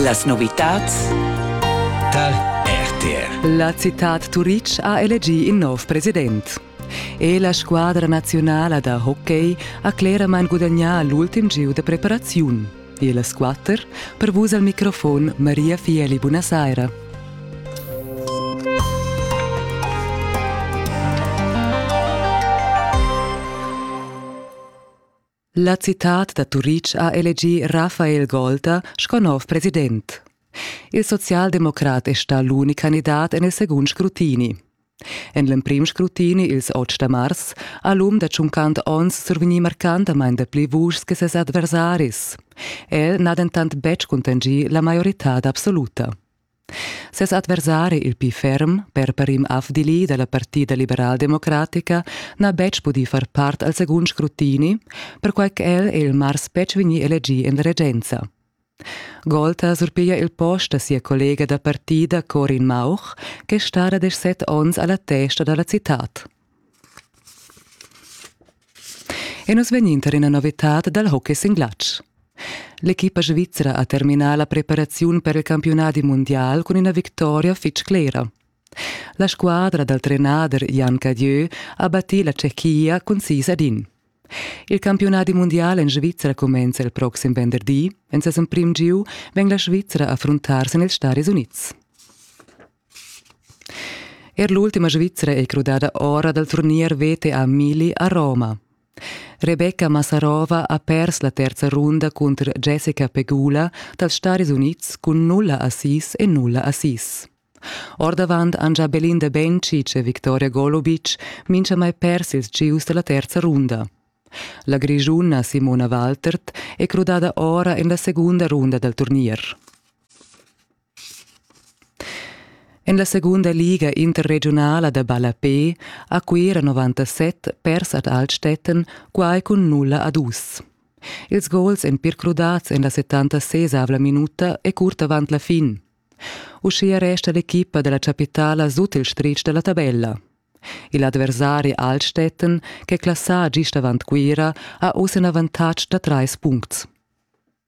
Las novitads tar RTR. La citad Turitg ha elegì in nov president. E la squadra nazionala da hockey ha cleramain gudagnà l'ultim gieu da preparaziun. E las quatter per vus al microfon Maria Fieli. Buonasera. La citad da Turitg ha elegì Rafael Golta sco nov president. Il socialdemocrat è stà l'unic candidat en il segund scrutini. En l'emprim scrutini, ils 8 da mars, ha l'um da 50 onns survegnì marcantamain dapli vuschs che ses adversaris. El n'ha dentant betg cuntanschì la maioritad absoluta. Ses adversari il pli ferm, per Parim Afdili dalla Partida liberaldemocratica, n'ha betg pudì far part al segund scrutini, perquai ch'el è il mars betg vegnì elegì en regenza. Gold ha surpiglia il post da sia collega da partida Corin Mauch, che stara desch set onns alla testa dalla citad. E nus vegnin tar ina novitad dal hockey sin glatsch. L'equipa svizra ha terminà la preparaziun per il campiunadi mundial cun ina victoria fitg clera. La squadra dal trenader Jan Cadieu ha battì la Tschechia cun sis ad in. Il campiunadi mundial en Svizra cumenza il proxim venderdi. En ses emprim giu vegn la Svizra a fruntar sin ils Staris Unids. Er l'ultima Svizra è crudada ora dal turnier VTA Mili a Roma. Rebecca Massarova ha pers la terza runda cunter Jessica Pegula dals Staris Unids cun nulla assis e nulla assis. Ordavant han già Belinda Bencic e Victoria Golubic minchamai pers ils gieus dalla terza runda. La grigiuna Simona Waltert è crudada ora en la segunda runda dal turnier. En la segunda liga interregiunala da ballapè ha Cuira 97 pers ad Altstetten quai cun nulla a dus. Ils gols èn pir crudads en la 76 minuta e curt avant la fin. Uschia resta l'equipa da la chapitala sut il stritg da la tabella. Il adversari Altstetten, ch'è classà gist avant Cuira, ha oz in avantatg da trais puncts.